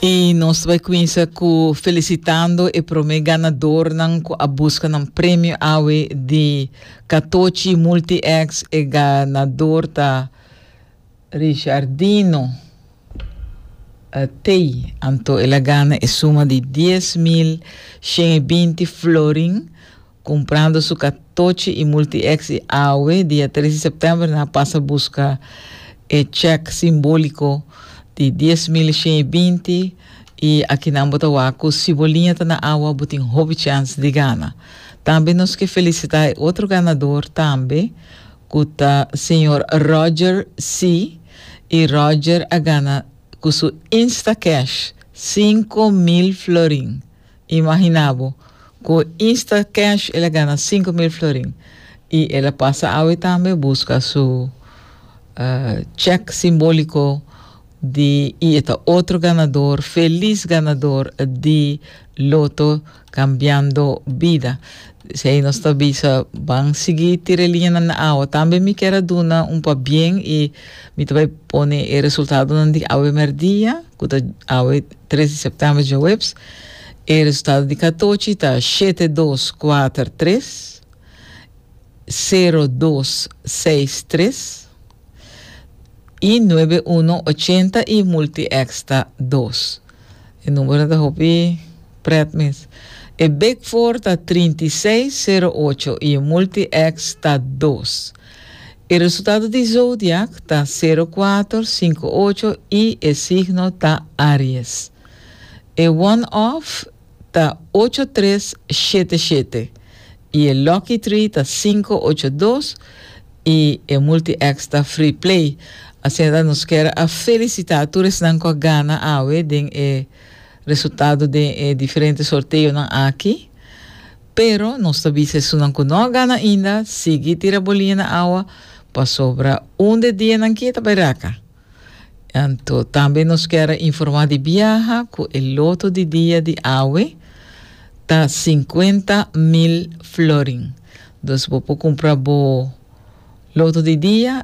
Y nos ta bai cuinsa cu felicitando e prome ganadornan cu a busca nan premio awe di Catochi Multi-X. E ganador ta Richardino eh, Tey. Anto el a gana e suma di dies mil shen i binti florin. Cumprando su catochi y multi-ex y awe dia tres di september nan a pasa busca e check simbolico di dies mil shen y binti y aki nan bo ta wak cu si bo liña ta na awa bo tin hopi chance di gana. Tambe nos ke felicita e otro ganador tambe cu ta Señor Roger C. y Roger a gana cu su Instacash cinco mil florin. Imagina bo, cu insta cash el a gana sinku mil florin y el a pasa awe tambe busca su check simbolico di y e ta otro ganador, feliz ganador di Loto Cambiando Bida. Dis ey nos ta bisa ban sigui tira e liñanan na awa. Tambe mi kier a duna un pabien y mi ta bay pone e resultadonan di awe merdia, cu ta awe Tres di september djaweps e resultado di katochi ta shete dos kuater tres, sero dos seis tres y nuebe uno ochenta y multiex ta dos. E numero ta hopi pret mes. E big four ta trinta y seis, sero ocho y e multiex ta dos. E resultado di zodiak ta sero kuater sinku ocho i e signo ta Aries. E one off ta ocho tres shete shete i e lucky tree ta sinku ocho dos i e multi X ta free play. Asina ta nos kier a felisitá tur esnan ku a gana awe den e resultado den e diferente sorteonan aki. Pero nos ta bisa esunnan ku no a gana ainda, sigui tira bolinha na awa, pasobra un di e dianan kie ta bai raka. Anto tambe nos kier a informá di biaha ku e loto di dia di awe ta sinkuenta mil florin. Dus bo por kumpra bo loto di dia